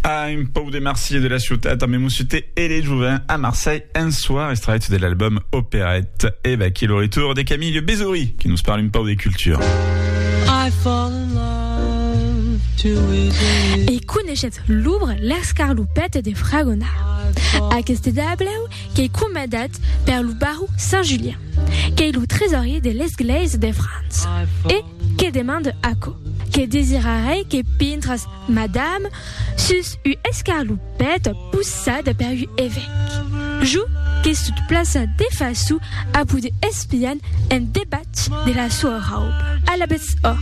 Ah, un pau de Marsier de la ciutat també Mussuté et les Jouvins à Marseille un soir, extrait de l'album Opérette. Et va qui le retour de Camille Bézouri qui nous parle un pau de culture. I fall in love too easily. E coneixet l'ouvre L'escarloupette de Fragonard. Aqueste dableu qu'ei comandat per lo baró Saint-Julien, qu'ei lo tresorier de l'esglèisa de França. E Que demande aquò? Que desirarei que pintras, madame, sus u escarlupèt possada per u evèc. Jo que sut plaça de façu a poder espian en debat de la soa rauba. Alabetz ò,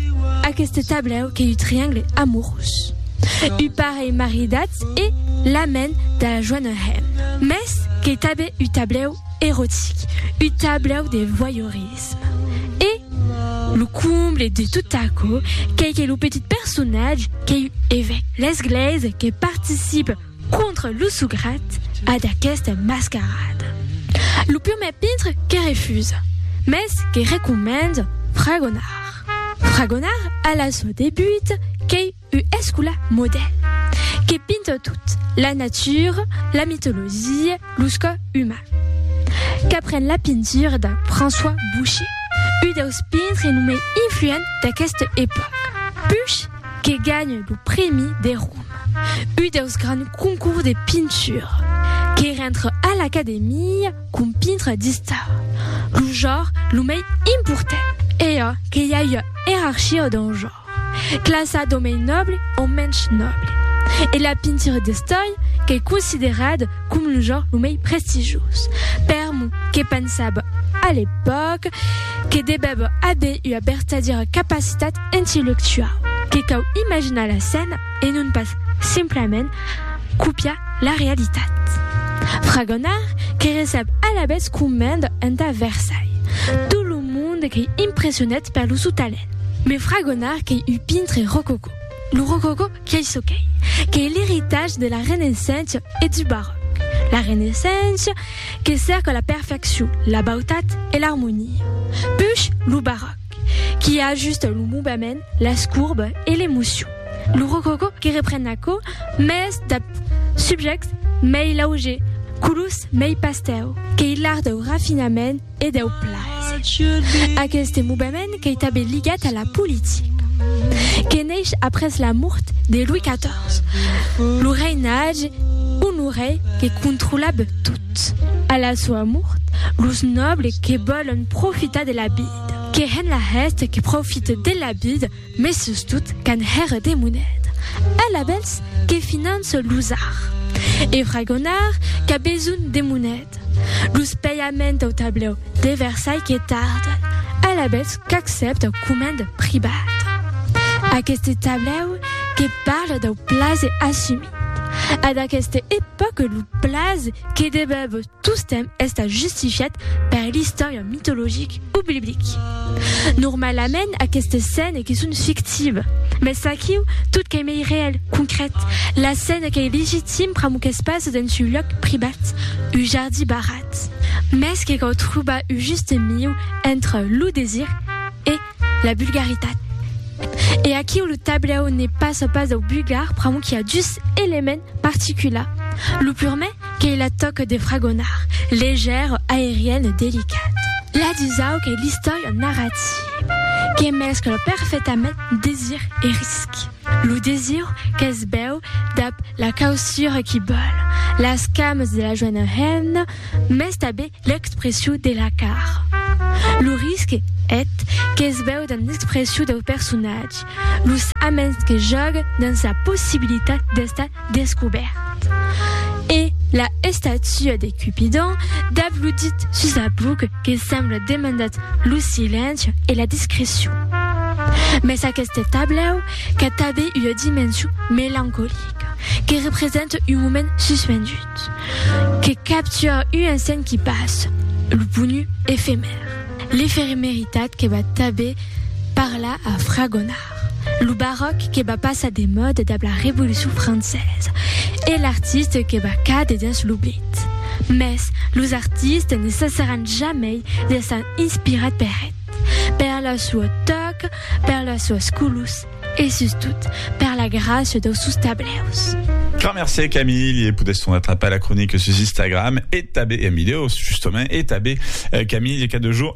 aqueste tablèu qu'ei u triangle amorós. U parelh maridatz e la men da la joana hèm. Mès qu'ei tabé u tablèu erotic, u tablèu de voyeurisme. L'erotisme. E lo comble de tot aquò qu'ei que lo petit personatge qu'ei un evèc l'esglèisa que participe contra lo sograt a d'aquesta mascarada. Lo prumèr pintre que refusa, mès que recomenda fragonar. Fragonar a la sua debut qu'ei U escola modèl que pinta tot, la natura, la mitologia, los cò uman. Qu'apren la pintura de François Boucher, u deus pintre lo mai influent d'aqueste epòca. Puch que ganha lo prèmi de Roma, u deus grands concours de pintura. Que rentre a l'Academia com pintre d'istar, lo jor lo mai important. E a que i a ua erarchia dau jor. Classa d'o mei nòble o mensh nòble. E la pintura d'estòi qu'ei considerada com lo genre lo mei prestigioz. Per mo, que pensava a l'epòca que devèva aver ua vertadiera capacitat intellectuau, que cau imaginar la scèna e non pas simplament copiar la realitat. Fragonard que recep alavetz comenda entà Versailles tot lo monde qu'ei impressionat per lo sou talent. Me fragonar qu'ei un pintre rococò. Lo rococò qu'ei çò qu'ei, qu'ei l'eritatge de la Renaissença e du Baròc. La Renaissença que cerca la perfeccion, la bautat e l'armonia. Push lo Baròc qui ajusta lo movement, las courbes e l'emocion. Lo rococò que repren aquò, mès dab subjèctes mei laugers, colors mei pastèu, qu'ei l'art dau rafinament, e deu plaser. Aqueste movement qu'ei tanben ligat a la politica, que neish après la mort de Louis XIV, lo reinatge Honoré que controlab tot. A la soa mort, los nòbles que vòlon profitar de la vida, que hèn la hèsta que profite de la vida, Mes sustot qu'an hèr de monet. Alabèls que finan se l'usar. E fragonar qu'a besonh de monet. Los paiaments au tablèu de Versailh que tarden. Alabèls qu'accèpt au coment privat. Aqueste tablèu que parle dau plase assumit. A d'aqueste epòque lo plase que debèb Tostemp estat justifiat per l'istòria mitologic o biblic. Normalament aquestes scènes que son fictives, mès aquiu tot qu'ei mei reèl, concrèt, la scène qu'ei legitim pr'amor qu'es pas dens un lòc privat, un jardí barrat. Mès que cau trobar un juste miu entre lo desir e la vulgaritat. E aquiu lo tablèu ne passa pas dau vulgar pr'amor qu'i a dus elements particulars, lo purmè, Qu'ei la tòca de fragonar, legèr, aerian e delicat. La dusau qu'ei l'istòria narrativa que mescla perfetament desir e risc. Lo desir qu'es bèu dab la causura qui bòl las cames de la joena hemna mès tabé l'expressiu de la cara. Lo risc, eth, qu'es bèu damb l'expressiu dau personatge, los aments que jòga damb sa possibilitat d'estar descobèrt e la estatua de Cupidon dab lo dit sus la buc que sembla demandat lo silenci e la discrecion. Mès aqueste tablèu qu'a tabé ua dimension melancolica que representa un moment suspendut que captura un instant qui passa, lo bonu efemèr, l'eferemeritat que va tabé parlar a fragonar. Lo baròc que va passar de mòda dab la Revolucion Francesa e l'artiste que va càder dins l'oblid. Mès los artistes ne cessaràn jamei d'èsser inspirats per eth, per la sua tòca, per las suas colors e sustot per la gràcia daus sòus tablèus. Grand mercé Camille e podètz tornar trapar la cronica sus Instagram e tabé en vidèo, justement, e tabé Camille cada jorn.